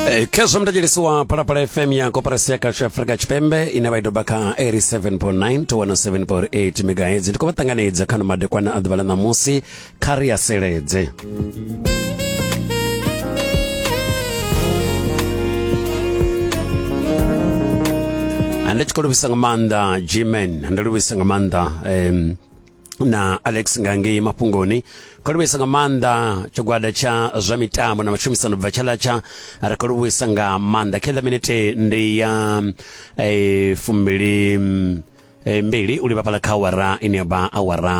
Eh, khezwo mudadjelesi wa phalaphala fm ya koporasi ya kasha afrika tshipembe ine vha i doba kha 87.9 to 107.8 megahertz ndi khou vha ṱanganedza kha no madekwana a ḓuvha ḽa ṋamusi kha ri a seledze ndi tshi khou livhisa nga maanḓa gman ndi livhisa nga maanḓa um, na alex nga ngei mafhungoni kho livhuisa nga maanḓa tshigwada tsha zwa mitambo na matshumisano bva tshalatsha ri kho livhuisa nga maanḓa khe ḽa minete ndi ya eh, fumbili mm, eh, mbili u livha fhala kha awara ine ya vha awara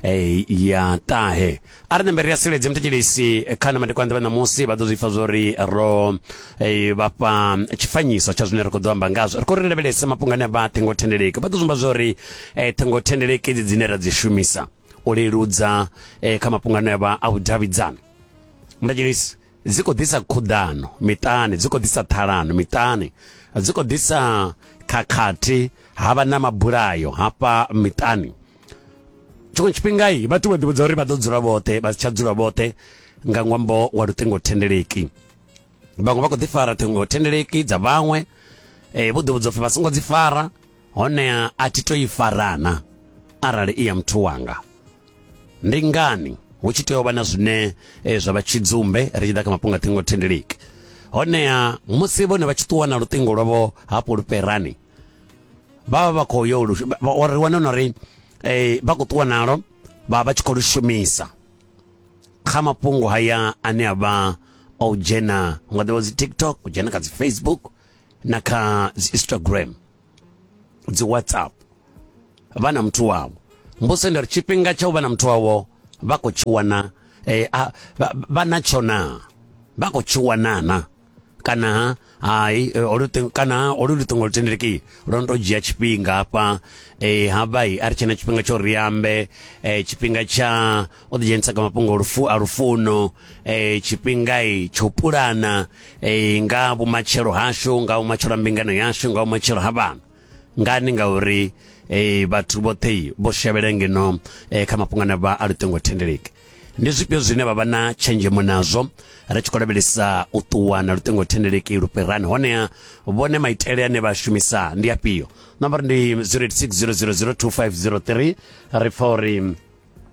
eh, ya ṱahe a ri ṋembe ri a siledze muthetshelesi kha na madekwana ḓuvha ṋamusi vha ḓo zwi pfa zwo ri ro eh, vha fha tshifanyiso tsha zwine ri khou ḓo amba ngazwo ri khou ri lavhelesa mafhungo ane a vha ṱhingothendeleki vha ḓo zwi amba zwo ri eh, ṱhingothendeleki idzi dzine ra dzi shumisa u leludza eh, kha mafhungo ane a vha a vhudavhidzani muthetshelesi dzi khou ḓisa khuḓano miṱani dzi khou ḓisa ṱhalano miṱani dzi khou ḓisa khakhathi ha vha na mabulayo hafha miṱani tshiṅwe tshifhinga i vhathu vha ḓivhudza uri vha ḓo dzula vhoṱhe vha si tsha dzula vhoṱhe nga ṅwambo wa luṱingothendeleki vhaṅwe vha khou ḓi fara ṱhingothendeleki dza vhaṅwe um vho ḓivhudza upfhi vha songo dzi fara honeha a thi to i farana arali i ya muthu wanga ndi ngani hu tshi tea u vha na zwine eh, zwa vha tshidzumbe ri tshi ḓa kha mafhungo a ṱhingo thendeleki honeha musi vhone vha tshi ṱuwa na luṱingo lwavho hafho lufherani vha vha vha khou yo lu- vha- vha- ri wane na uri eh, vha khou ṱuwa nalo vha vha vha tshi khou lu shumisa kha mafhungo haya ane a vha o dzhena nga ḓivha dzi tiktok u dzhena kha dzi facebook na kha dzi instagram dzi whatsapp vha na muthu wavho mbose ndari tshifhinga tsha u vha na muthu wavho vha khou tshi wana eh, vha na tsho na vha khou tshi wana na kana hai eh, oluṱingo kana olu luṱingo lu tendeleki lwo no tou dzhia tshifhinga hafha um eh, havha i a ri tshena tshifhinga tsho ri ambe um tshifhinga tsha o ḓi dzhenisa kha mafhungo lufu a lufuno um eh, tshifhingai tsho pulana um nga vhumatshelo hashu nga vhumatshelo ha mbingano yashu nga vhumatshelo ha vhana ngani ngauri um vhathu vhoṱhe vho shavhela ngeno um kha mafhungo ane vha a luṱingo thendeleki ndi zwifhio zwine vha vha na tshenzhemo nazwo ri tshi khou lavhelesa u ṱuwa na luṱingo thendeleki lu fhirani honea vhone maitele ane vha shumisa ndi afhio nambara ndi 086 000 2503 ri pfa uri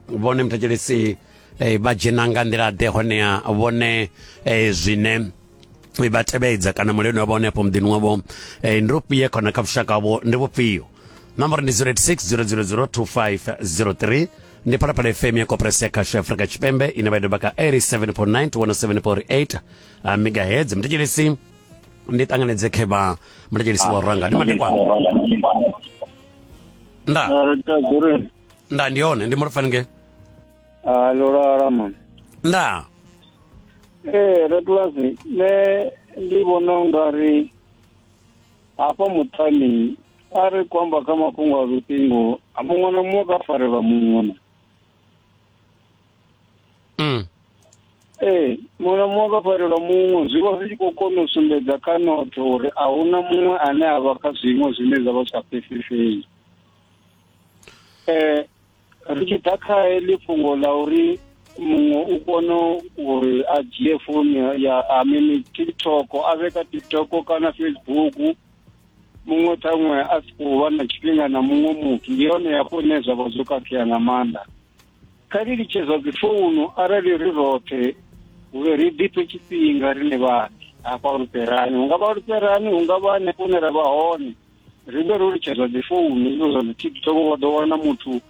vhone muthetshelesi eh, vha dzhena nga nḓila ḓe honeha vhone eh, zwine vha tevhedza kana muleni wavho hone afho muḓini wavho eh, ndi ufhie khona kha vhushaka vho ndi vhufhio nomboro ndi 0860002503 ndi phalaphala fm ya koperasi ya khasho ya afrika tshipembe ine vha idoba ka 87.9 to 107.8 ah, megahertz muthetshelesi ndi ṱanganedze khevha muthetshelesi wa ranga ndi madekwana nda nda ndi hone ndi mulofhani nge a lolala mama nda ee rebulasi nṋe ndi vhona u nga ri hafha muṱani a ri khou amba kha mafhungo a luṱingo a muṅwe na muṅwe ka farelwa muṅwe mm. ee muṅwe na muṅwe ka farelwa muṅwe zwi vha zwi tshi khou kona u sumbedza kha notho uri a huna muṅwe ane a vha kha zwiṅwe zwine zwa vha zwi sa pfesesei eh ri tshi ḓa kha heḽi fhungo ḽa uri muṅwe u kono uri a dzhie founu ya a mini tiktok a vhe ka tiktok kana facebook muṅwe ṱhaṅwe a si khou vha na tshifhinga na muṅwe muthu ndi yone yafho ine zwa vha zwo khakhea nga maanḓa kha ri litshe zwa dzifounu arali ri roṱhe uri ri ḓiphe tshifhinga rine vhane hafha luperani hu nga vha luperani hu nga vha hanefho hune ra vha hone ri vhe ro litshedza dzi founu izo zwa dzi tiktok wa ḓo wana muthu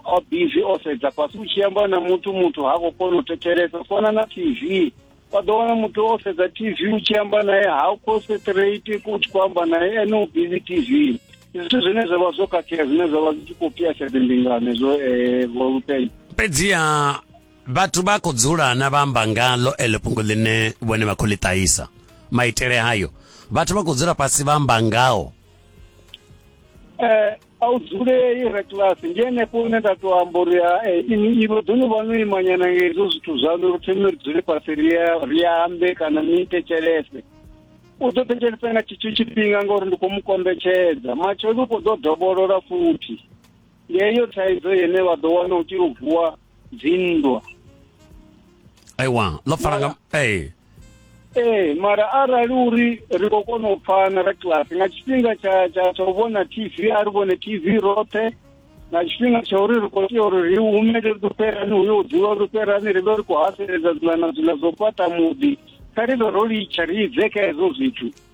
o busy o sedza fhasi u tshi amba na muthu muthu ha khou kona u thetshelesa fona na tv wa ḓo wana muthu o sedza tv u tshi amba naye ha u concentrate u tshi khou amba naye ene u busy tv zwithu zwine zwa vha zwo khakhea zwine zwa vha zwi tshi khou pfiyasha dzimbingano zwo um eh, volupeni fhedziha vhathu vha khou dzula na vha amba ngalo eḽo fhungo ḽine vhone vha khou ḽi ṱahisa maitele hayo vhathu vha khou dzula fhasi vha amba ngao eh, a u dzulei re kilasi ndi henefho une nda tou amba uri eh, ivo ḓo ni vha no imanyana nga hezwo zwithu zwaṋu ri thome ri dzule fhasi ri ambe kana ni ite tshelese u ḓo thetshelesa nga tshitsho tshifhinga ngauri ndi khou mu kombetshedza matshelo u khou ḓo dovholola futhi yeyo thaidzo yene vha ḓo wana u tshi luvuwa dzinndwa aiwa ḽo fara nga ee ee mara arali uri ri khou kona u pfana ra kilasi nga tshifhinga tsha tsha tsha u vhona tv a ri vhone tv roṱhe nga tshifhinga tsha uri ri khou tea uri ri humele ri ḓo fherani hu yo dzula ri fherani ri vhe ri khou haseledza dzula na dzula zwo fhaṱa muḓi kha ri vhe ro litsha ri idze kha hezwo zwithu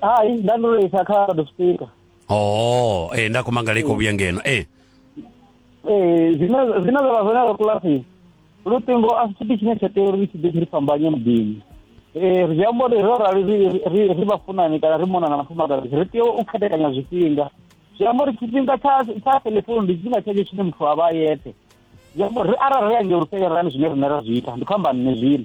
hai nda ndo to isa kha lord of speaker oh eh nda kuma ngale ko vhuya ngeno eh ee zwine zwine zwa vha zwone ro kilasini luṱingo a si tshithu tshine tsha tea uri ri tshi ḓe tshi ri fhambanye muḓini ee ri zwi amba uri ro rali ri- ri ri vhafunani kana ri mona na vhafumakadzi ri tea u khethekanya zwifhinga zwi amba uri tshifhinga tsha tsha telefoni ndi tshifhinga tshentsho tshine muthu a vha a yeṱhe zwi amba uri arali ri ange uri fhelelani zwine riṋe ra zwi ita ndi khou amba nṋe zwino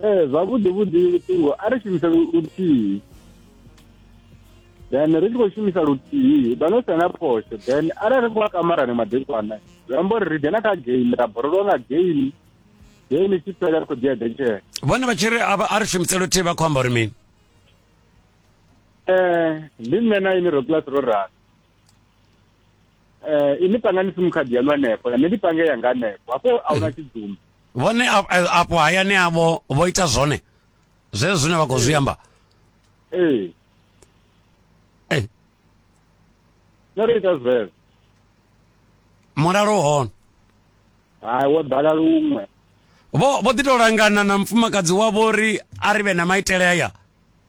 ee eh, zwavhuḓi vhuḓi luṱingo a ri shumise luthihi then ri tshi khou shumisa luthihi vha no sena phosho then arali ri khou a kamarani madekwana zwi amba uri ri dzhena kha game ra borolowa nga game game i tshi fhela ri khou dzhia dentshele vhone vha tshi ri a ri shumise luthihi vha khou amba uri mini um ndi nṋe na ini ro class ro rana um ini pangani sim card yanu hanefho nṋe ndi pange yanga hanefho hafho a huna tshidzumba vhone afho hayani avho vho ita zwone zwezwo zwine vha khou zwi amba ee eh. no ri ita zwezwo mulalo hone hai wo ḓala luṅwe vho vho ḓi tou langana na mufumakadzi wavho uri a ri vhe na maitele aya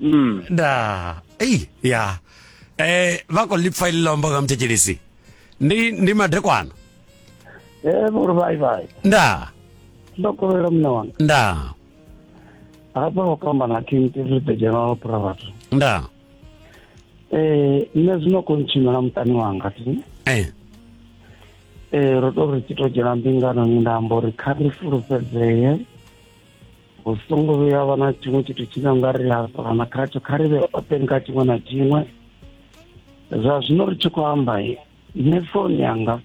mm. nda ei ya eh vha khou ḽi pfa iḽi ḽa omba nga muthetshelisi ndi ndi madekwana eh vhori vai vai nda ndo kovhela muṋe wanga nda hafha ho kamba na king tiri the general prophet nda eh nṋe zwino khou ntshimela muṱani wanga ti eh eh ro to ri tshi to dzhena mbingano ni nda amba uri kha ri fulufhedzee hu songo vhuya vha na tshiṅwe tshithu tshine a nga ri hafana khatsho kha ri vhe open kha tshiṅwe na tshiṅwe zwa zwino ri tshi khou amba nṋe foni yanga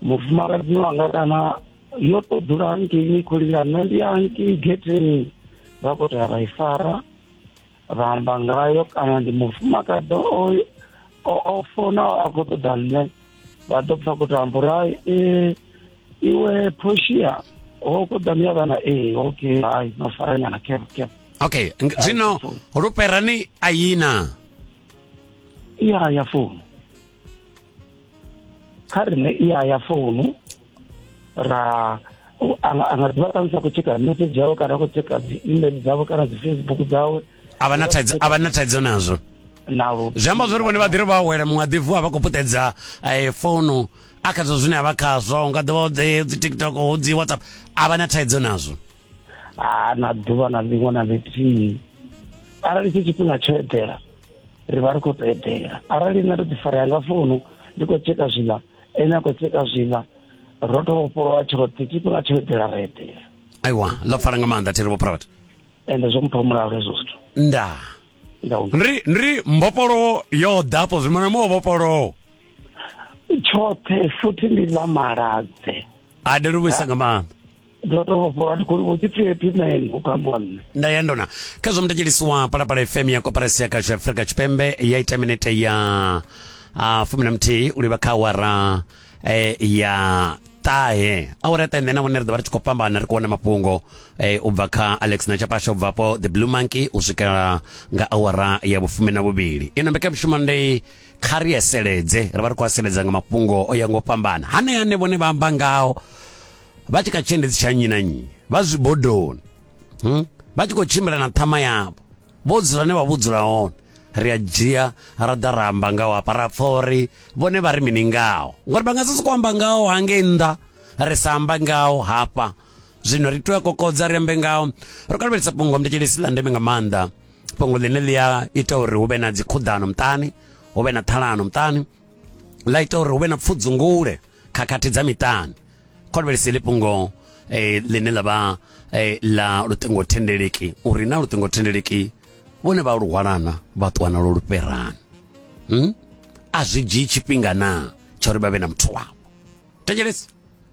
mufumakadzi wanga kana yo to dzula hangei ni khou lila nṋe ndi hangei getheni vha khou tea vha i fara ra amba ngayo kana ndi mufumakadzi oyo o fona a khou ṱoḓa nṋe vha ḓo pfa kuti amba uri hai ee iwe portia ho khou ḓa miya vhana ee okay hai no farenyana cap cap okay zwino luperani a yina iya ya founu kha rine i ya ya founu ra anga ḓivha ṱamusi a khou tsheka message yawe kana a khou tsheka dzi email dzavho kana dzi facebook dzawe a vha na thaidzo a vha na thaidzo nazwo nalo zwi amba zwori vhone vha ḓiri vha awela muṅwe a ḓivu a vha khou puṱedza eh, founu a khazwo zwine a vha khazwo u nga ḓivha dzi tiktok dzi whatsapp a vha na thaidzo nazwo ha na ḓuvha na ḽiṅwe na ḽithihi arali tshi tshifhinga tsho eḓela ri vha ri khou tou eḓela arali nṋe ndo ḓi farea nga founu ndi khou tsheka zwiḽa ene a khou tsheka zwiḽa ro to vhofholowa tshoṱhe tshifhinga tsho eḓela ra eḓela aiwa ḽo pfala nga maanḓa thero vhophrofet ende zwo mpha mulalo hezwo zwithu nda ndri ndri mbopolowo yo ḓa afho zwimana muwo vhopolowo tshoṱhe futhi ndi ḽa maladze a ndo ri vhuisa nga maanḓa ndo to vhofholowa ndi khou tshi pfi phi na ene u kambiwa nne nda ya ndona kha zwa mutatshilisiwa palapala fm ya koparasi ya kashu afrika tshipembe ya ita minete ya uh, fumi na muthihi u livha kha awara eh, ya ṱahe awara ya ṱahe nṋe na vhone ri ḓo vha ri tshi khou fhambana ri khou wana mafhungo eh, u bva kha alex na tshapasha u bva po the blue monkey u swikela nga awara ya vhufumi na vhuvhili ino mbekanyamushumo ndi kha ri eseledze ri vha ri khou aseledza nga mafhungo o ya ngo fhambana hanea ane vhone vha amba ngao vha tshi kha tshiendedzi tsha nnyi na nnyi vha zwibodoni hmm? vha tshi khou tshimbila na ṱhama yavho vho dzula ne vha vho dzula hone ri a dzhia ra ḓa ra amba ngao hafha ra pfa uri vhone vha ri mini ngao ngori vha nga si sokou amba ngao hangei nnḓa ri sa amba ngao hafha zwino ri tea kokodza ri ambe ngao ro kalelisa fhungo mndetshelesi ḽa ndeme nga maanḓa fhungo ḽine ḽi a ita uri hu vhe na dzikhuḓano muṱani hu vhe na ṱhalano muṱani ḽa ita uri hu vhe na pfudzungule khakhathi dza miṱani khonvhelisi ḽi fhungo eh, ḽine ḽa vha eh, ḽa luṱingothendeleki uri na luṱingothendeleki vhone vha lu hwalana vha ṱuwa nalo lu fherani hmm? a zwi dzhii tshifhinga na tsha uri vha vhe na muthu wavho thetshelesi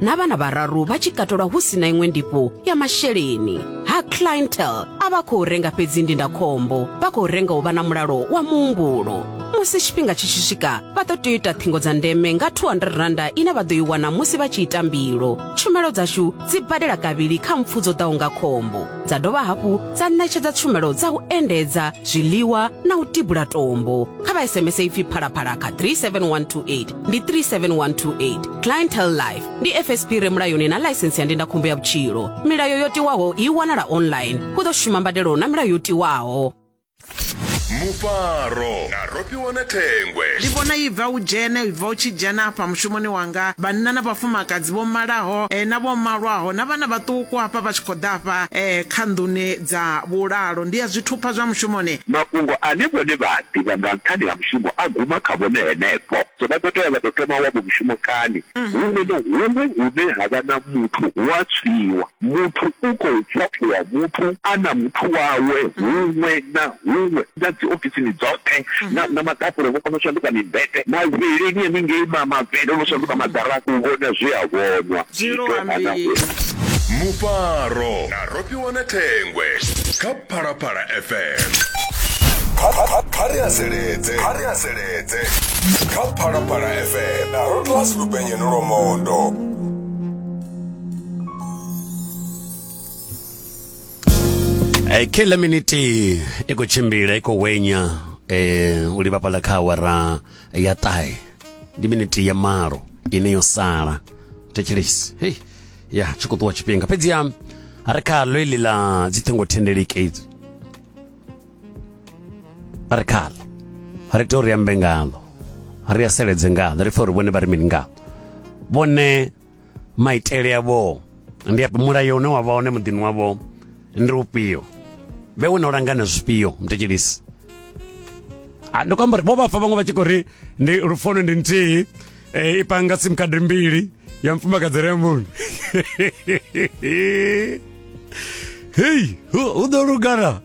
na vhana vhararu vha tshi katelwa hu si na iṅwe ndifho ya masheleni ha clientel a vha khou renga fhedzi ndindakhombo vha khou renga u vha na mulalo wa muhumbulo musi tshifhinga tshi tshi swika vha ḓo tea u ita ṱhingo dza ndeme nga 200 randa ine vha ḓo i wana musi vha tshi ita mbilo tshumelo dzashu dzi badela kavhili kha mpfu dzo ḓaho nga khombo dza dovha hafhu dza ṋetshedza tshumelo dza u endedza zwiḽiwa na u tibula tombo kha vha sms ipfi phalaphala kha 37128 ndi 37128 clientele life ndi fsp re mulayoni na ḽaisensi ya ndindakhombo ya vhutshilo milayo yo tiwaho i wanala online hu ḓo shuma mbadelo na milayo yo tiwaho mufaro na rofhiwana thengwe ndi vhona i bva u dzhene i bva u tshi dzhena hafha mushumoni wanga vhanna na vhafumakadzi vho malaho eh, na vho malwaho na vhana vhaṱuku hafha vha tshi khou ḓa hafha eh, kha nḓuni Dza vhulalo ndi ya zwithupha zwa mushumoni. Mafhungo ane vhone vha a ḓivha nga nṱhani ha mushumo a guma kha vhone henefho. So vha ḓo tea vha tou thoma wavho mushumo kani? Huṅwe na huṅwe hune ha vha na muthu hu a tswiwa. Muthu u khou ṱhaṱhuvha muthu a na muthu wawe huṅwe na huṅwe, na dzi ofisini dzoṱhe, na, na maḓakule vho kona u shanduka mimbete, mavhilini haningei ma, mavhele o no shanduka maḓarafu, u vhona zwe a vhonwa, zwi tou vha na huṅwe. Mufaro. ni wane thengwe kha phalaphala fm kha ri haseledze kha ri haseledze kha phalaphala fm na rotlasi lupenye ni lomondo Eh, kila miniti i khou tshimbila i khou wenya eh, u livhapala kha awara ya ṱahe ndi miniti ya malo ine yo sala thetshelesi hei ya tshi khou ṱuwa tshifhinga fhedziha ri khaḽo iḽi ḽa dzi ṱhingo thendeleki idzi ri khaḽo ri tea uri ambe ngaḽo ri aseledze ngaḽo ri pfa uri vhone vha ri mini ngaḽo vhone maitele avho ndi afhi mulayo une wa vha hone muḓini wavho ndi ufhio vhe wo no langana zwifhio mutetshelisi ndi khou amba uri vho vhafa vhaṅwe vha tshi khou ri ndi lufono ndi nthihi e, ipanga sim card mbili ya mfumakadzi re munhu hei u ḓo lugana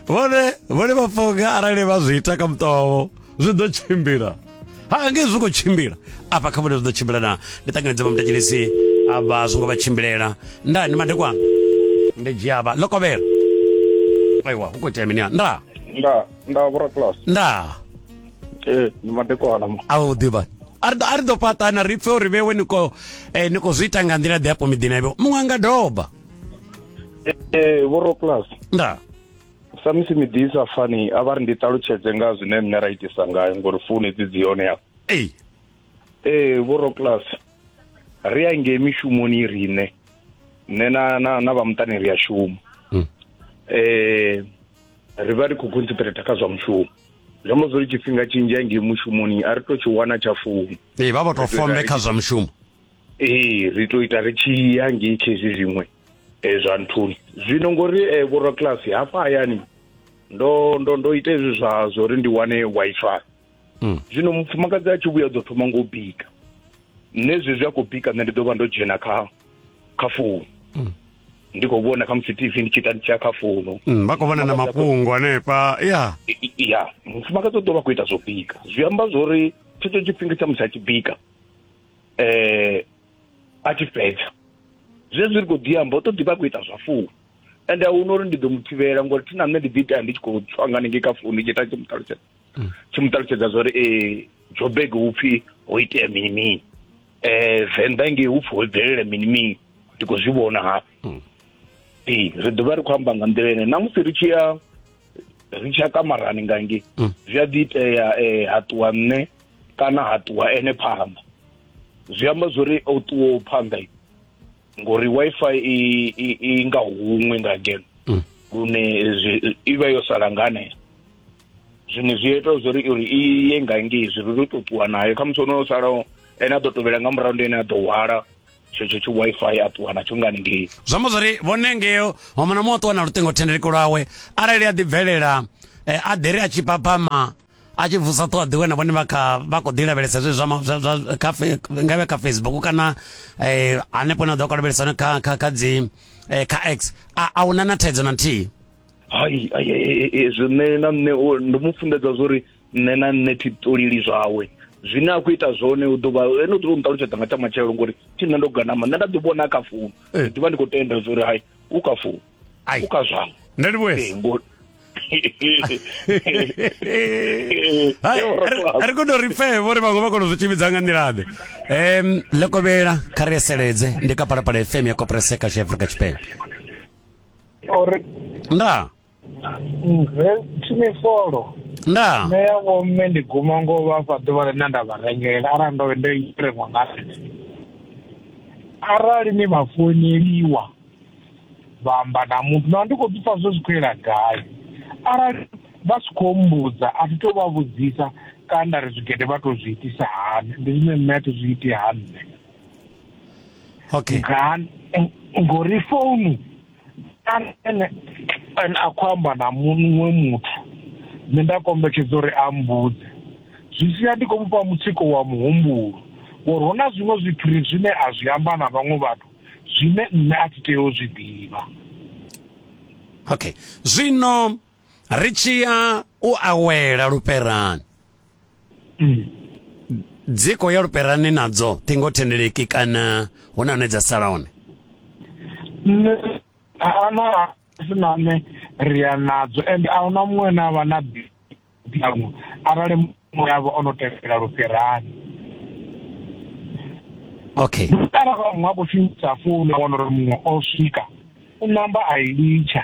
vhone vhone vha funga arali vha zwi ita kha muṱa wavho zwi ḓo tshimbila ha nge zwi khou tshimbila afha kha vhone zwi ḓo tshimbila na ndi ṱanganedza vha mutetshelisi avha zwi ngo vha tshimbilela nda ni madekwana ndi dzhia avha ḽo kovhela aiwa hu khou itea mini nda nda nda vhora class nda ee ndi madekwana mu a u ḓivha a ri ḓo- a ri ḓo fhaṱana ri pfe uri vhewe ni khou eh, ni khou zwi ita nga nḓila ḓe afho miḓini avho muṅwe a nga doba ee vhoro plus nda samusi miḓi i sa fani a vha ri ndi ṱalutshedze nga zwine nṋe ra itisa ngayo ngori founu dzi dzi hone hafha ei ee vhoro plus ri a ngei mishumoni riṋe nṋe na na na vha muṱani ri a shuma Mm. eh ri vha ri khou concentrate kha zwa mushumo zwi amba zwori tshifhinga tshinzhi a ngei mushumoni a ri to tshi wana tsha founu ee vha vha to fombe kha zwa mushumo ee ri to ita ri tshi ya ngei khezwi zwiṅwe um zwa nthuni zwino ngori um vhoraclasi hafha hayani ndo ndo ndo ita hezwi zwa zwori ndi wane waifai hmm. zwino mufumakadzi a tshi vhuya ḓo thoma ngo bika nṋe zwezwi a khou bika nṋe ndi ḓo vha ndo dzhena kha kha founu hmm. ndi khou vhona kha musi tv ndi tshi ita nditshiya kha founu mm, vha khou vhona na mafhungo hanefha ya ya mufumakadzi u ḓo vha khou ita zwo bika zwi amba zwo uri tshetsho tshifhinga tsha musi a tshi bika um a tshi fhedza zwezwi ri khou ḓi amba u ṱoḓi vha khou ita zwa founu ende a huna uri ndi ḓo mu thivhela ngori thi na nṋe ndi ḓi itea ndi tshi khou tswa nga ningei kha founu ndi tshi ita tshi mu ṱalutshedza mm. tshi mu ṱalutshedza zwa uri e eh, jobeg hu pfhi ho itea mini mini um venḓa ngei hu pfhi ho bvelela mini mini ndi khou zwi vhona ha mm. ee ri ḓovha ri khou amba nga nḓila ene namusi ri tshi ya ri tshi ya kamarani ngange mm. zwi a ḓi itea um ha ṱuwa nṋe kana ha ṱuwa ene phanḓa zwi amba zwo ri o ṱuwaho phanḓa ngori wifi i i i nga huṅwe nga ngeno mm. lune i vha yo sala nga hanea zwiṅwe zwi ita zwo ri uri i ye nga ngei zwi ri to ṱuwa nayo khamusi ono o salaho ene a ḓo tovhela nga murahu ndi ene a ḓo hwala tshetsho tshi wifi a ṱuwa natsho nga ngei zwi amba zwori vhone ngeo mama na muṅwe a ṱuwa na luṱingothendeleki lwawe arali a ḓibvelela eh, a ḓi ri a tshi papama a tshi vusa ṱhoho ḓiwe na vhone vha kha vha khou ḓi lavhelesa zwe zwa zwa- zwa- kha fe- nga vhe kha facebook kana eh, hanefho na ḓo kalavhelesa hone kha kha kha dzi eh, kha x a a huna na thaidzo na nthihi hai hezwi nṋe na nṋe ndo mu funḓedza zwo uri nṋe na nṋe thi ṱolili zwawe zwine a khou ita zwone u ḓuvha ene u ḓuvha u nṱalutshedza nga tsha matshelo ngori thi nṋe ndo ganama nṋe nda ḓi vhona kha founu eh. ndi vha ndi khou tenda zwo uri hai u kha founu u kha zwango nṋe ndi vhuesa eh, ri kono ri pfe vhori vhaṅwe vha kono zwi tshivhidza nga nḓilaḓe um ḽekovhela kha ri eseledze ndi kapalapala fm ya kopreseka zwi afrika tshipembe uri nda nge tshine folo nda nṋe ya vho mme ndi guma ngo vha fha ḓuvha ḽine nda vha rengela arali ndo ndo ireṅwa nga arali ni vha founeliwa vha amba na muthu na ndi khou ḓi pfa zwo zwi khou yela gai arali vha si khou mbudza a thi to vha vhudzisa kana nda ri zwigede vha to zwi itisa hani ndi zwine nṋe a thi zwi iti ha nṋe okay ngani ngori founu ene ene a khou amba na muṅwe muthu nṋe nda kombetshedza uri a mbudze zwi sia ndi khou mufha mutsiko wa muhumbulo ngori hu na zwiṅwe zwipiri zwine a zwi amba na vhaṅwe vhathu zwine nṋe a thi tea u zwi ḓivha okay zwino ri tshi ya u awela luperani mm. dzi khou ya luperani nadzo ṱhingo thendeleki kana hu na hune dza sala hone ana sinane ri ya nadzo ende a huna muṅwe na vha na ḓiamu arali muṅwe yavho o no tevhela luperani okay arali vha muṅwe a khou shumisa founu a wana uri muṅwe o swika u namba a i litsha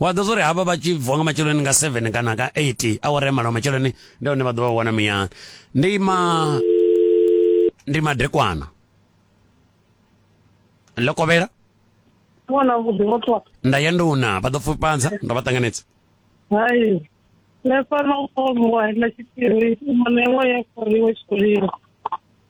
wa ḓo zwa uri havha vha tshi vuwa nga matsheloni nga 7 kana ka 8 awara ya malo matsheloni ndi hone vha ḓo vha wana muyani ndi ma ndi madekwana ḽo kovhela wana vhuḓi muthu wa nda ya ndi una vha ḓo pfupanza ndo vha ṱanganedza hai nda fana u ṱomiwa na tshiphiri u mona iṅwe ya foriwe tshikoleni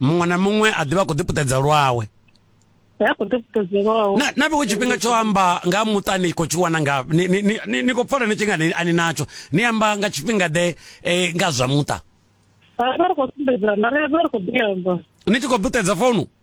muṅwe na muṅwe a ḓivha a khou ḓipuṱedza lwawe na vhiwe tshifhinga tsho amba nga muṱani khou tshi wana nga ni khou pfala ni tshi nga ani natsho ni amba nga tshifhinga ḓe eh, nga zwa muṱa ni tshi khou ḓipuṱedza founu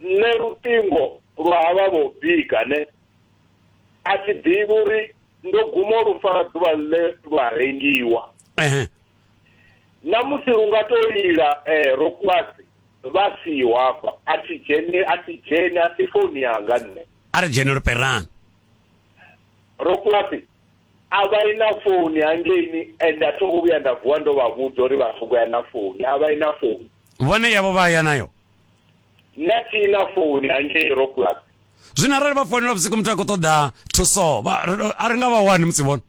nṋe luṱingo lwa havha vho bika ne a thi ḓivhi uri ndo guma lu fara ḓuvha ḽe lwa rengiwa na musi lu nga to lila eh, ro kwasi vha siho hafha a thi dzheni a thi dzheni a si founi yanga nṋe a ri dzheni luperani ro kwasi a vha i na founi hangeini and a thongo vhuya nda vuwa ndo vha vhudza uri vha songo ya na founi a vha i na founi vhone yavho vha ya nayo nṋe thi na founi hangei rocklas zwino arali vha founela vhusiku muthu a khou ṱoḓa thuso vha- ri- a ri nga vha wani musi vhona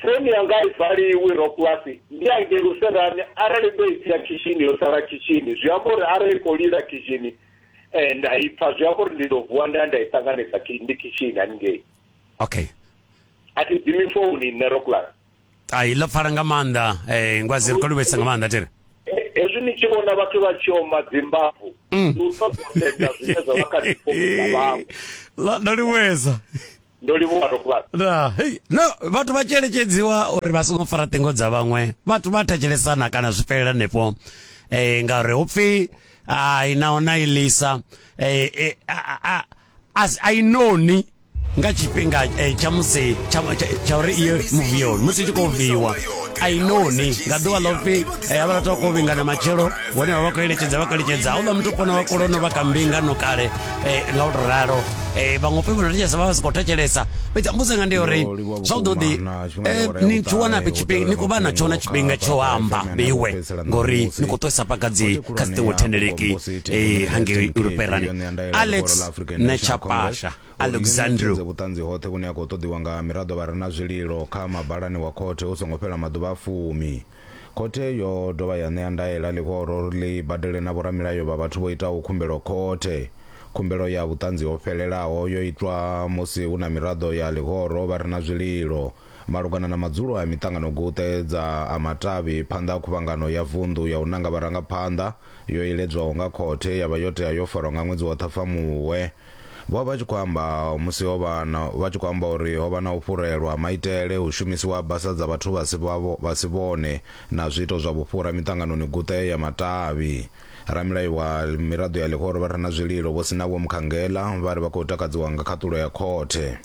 founi yanga i valiwi rocklas ndi hangei luserani arali ndo i sia khishini yo sala khishini zwi amba uri arali i khou lila khishini um nda i pfa zwi amba uri ndi ḓo vuwa nda ya nda i ṱanganisa khi- ndi khishini haningei okay a thi dzimi founi nṋe rocklas ai ḽo pfala nga maanḓa um ngwazi ri khou livhesa nga maanḓa tere hezwi ni tshi vhona vhathu vha tshi oma dzimbafu mm. ndi u ṱoḓosedza zwine zwa vha kha dzifomisa vhawe ndo livhuesa ndo livhuwa rokulat no vhathu vha tshelekedziwa uri vha songo fara ṱingo dza vhaṅwe vhathu vha thetshelesana kana zwi fhelela nepo um eh, ngauri hu pfi ai naho na ilisa um eh, eh, as i know ni nga tshifhinga eh, tsha musi tsha uri iyo muvi yone musi tshi khou viwa i know ni nga ḓuvha ḽo pfi eh, havha vhathu vha khou vhingana matshelo vhone vha vha khou eletshedza vha khou eletshedza houḽa muthu kona vha kolono vha ka mbingano kale eh, nga u to ralo vhaṅwe pfi vhona thetshelesa vha vha si khou thetshelesa fhedzi mbudzo nga ndi ya uri zwa u ḓo ḓi ni tshi wana fhe tshifhinga ni khou vha na tshona tshifhinga tsho amba iwe ngori ni khou ṱuwisa pakadzi kha dzi ṱingo thendeleki hangei europeani Alex Nechapasha Alexandru vhuṱanzi hoṱhe vhune ha khou ṱoḓiwa nga miraḓo vha re na zwililo kha mabalani wa khothe hu songo fhela maḓuvha a fumi khothe yo dovha ya ṋea ndaela ḽihoro uri ḽi badele na vhoramilayo vha vhathu vho itaho khumbelo khothe khumbelo ya vhuṱanzi ho fhelelaho yo itwa musi hu na miraḓo ya ḽihoro vha re na zwililo Malugana na madzulo a miṱanganoguṱe dza a matavhi phanḓa ha Khuvhangano ya Vunḓu ya u Nanga Vharangaphanḓa yo iledzwaho nga khothe ya vha yo tea yo farwa nga ṅwedzi wa Ṱhafamuhwe, vho vha vha tshi khou amba musi ho vha na vha tshi khou amba uri ho vha na u fhurelwa ha maitele, hu shumisiwa ha basa dza vhathu vha si vha vha si vhone na zwiito zwa vhufhura miṱanganoni guṱe ya matavhi. Ramilayo wa miraḓo ya ḽihoro vha re na zwililo Vho Sinavho Mkhangela vha ri vha khou takadziwa nga khaṱulo ya khothe.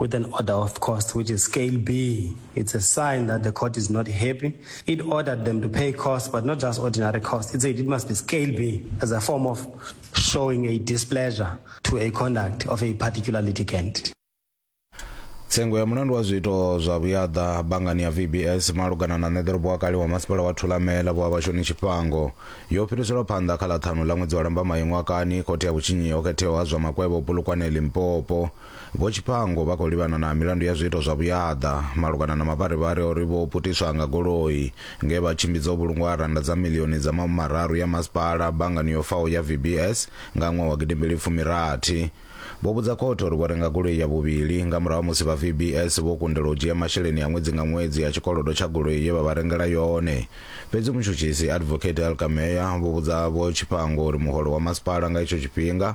with an order of cost, which is scale B. It's a sign that the court is not happy. It ordered them to pay costs, but not just ordinary costs. It said it must be scale B as a form of showing a displeasure to a conduct of a particular litigant. tsengo ya mulandu wa zwiito zwa vhuyaḓa bangani ya vbs malugana na ṋeḓorobo wa kale wa masipala wa thulamela vho havhashoni tshifhango yo fhiriselwa phanḓa kha ḽa ṱhanu ḽa ṅwedzi wa lambamai ṅwakani khothe ya vhutshinyi ho khetheaho ha zwa makwevho polokwane limpopo Vho Tshipango vha khou livhana na milandu ya zwiito zwa vhuyaḓa malugana na mavharivhari a uri vho putiswa nga goloi nge vha tshimbidza ho vhulungwa rannda dza miḽioni dza mahumimararu ya masipala banngani yo faho ya VBS nga ṅwaha wa gidimbili fumi rathi. Vho vhudza khothe uri vho renga goloi ya vhuvhili nga murahu ha musi vha VBS vho kundelwa u dzhia masheleni a ṅwedzi nga ṅwedzi a tshikolodo tsha goloi ye vha vha rengela yone. Fhedzi mutshutshisi Advocate Elka Meyer vho vhudza Vho Tshipango uri muholo wa masipala nga itsho tshifhinga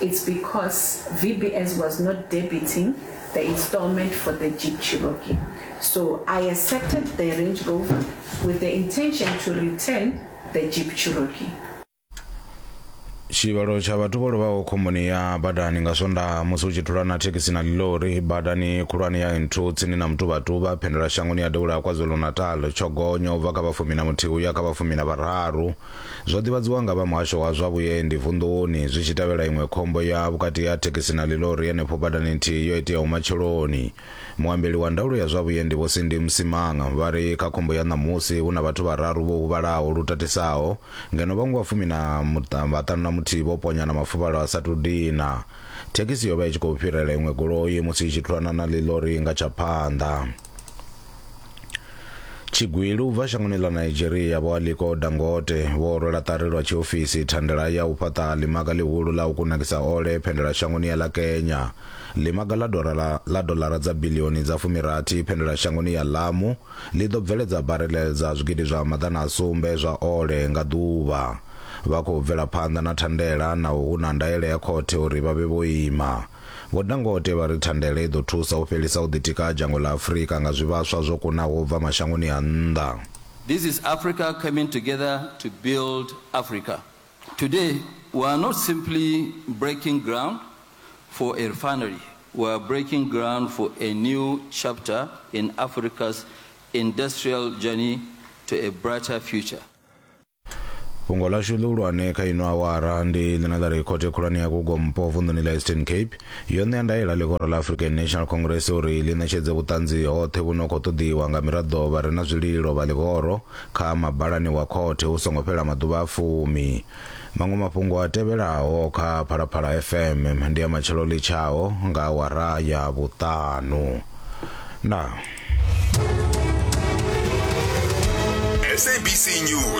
It's because VBS was not debiting the installment for the Jeep Cherokee. So I accepted the Range Rover with the intention to return the Jeep Cherokee. tshivhalo tsha vhathu vho lovhaho khomboni ya badani nga swondaha musi hu tshi thulana thekhisi na ḽilori badani khulwane ya nthu tsini na mutuvhatuba phendela shangoni ya devhula ya kwazulu-natal tsho gonya u bva kha vhafumi na muthihi u ya kha vhafumi na vhararu Zwo ḓivhadziwa nga vha muhasho wa zwa vhuendi vunḓuni zwi tshi tevhela iṅwe khombo ya vhukati ha thekhisi na ḽilori henefho badani nthihi yo iteaho matsheloni. Muambeli wa ndaulo ya zwa vhuendi Vho Sindi Msimang vha ri kha khombo ya ṋamusi hu na vhathu vhararu vho huvhalaho lu tatisaho ngeno vhaṅwe vha fumi na vhaṱanu na muthihi vho ponya na mafuvhalo a sa tou dina. Thekhisi yo vha i tshi khou fhirela iṅwe goloi musi i tshi thulana na ḽilori nga tsha phanḓa. tshigwili u bva shangoni ḽa nigeria vho aliko dangote vho rwela ṱari lwa tshiofisi thandela ya u fhaṱa ḽimaga ḽihulu ḽa u kunakisa ole phendela shangoni ya ḽa kenya ḽimaga ḽa dolara, ḽa dolara dza bilioni dza fumirathi phendela shangoni ya lamu ḽi ḓo bveledza barele dza zwigidi zwa maḓana a sumbe zwa ole nga ḓuvha vha khou bvela phanḓa na thandela naho hu na ndaela ya khothe uri vha vhe vho ima Vho Dangote vha ri thandela i ḓo thusa u fhelisa u ḓitika ha dzhango ḽa Afrika nga zwivhaswa zwo kunaho u bva mashangoni a nnḓa. This is Africa coming together to build Africa. Today we are not simply breaking ground for a refinery, we are breaking ground for a new chapter in Africa's industrial journey to a brighter future. Fhungo ḽashu ḽihulwane kha ino awara ndi ḽine ḽa ri khothe khulwane ya Gugompo vunḓuni ḽa Eastern Cape yo ṋea ndaela ḽihoro ḽa African National Congress uri ḽi ṋetshedze vhuṱanzi hoṱhe vhu no khou ṱoḓiwa nga miraḓo vha re na zwililo vha ḽihoro kha mabalani wa khothe hu songo fhela maḓuvha a fumi. Maṅwe mafhungo a tevhelaho kha Phalaphala FM ndi a matshelo ḽi tshaho nga awara ya vhuṱanu. Ndaa. SABC News.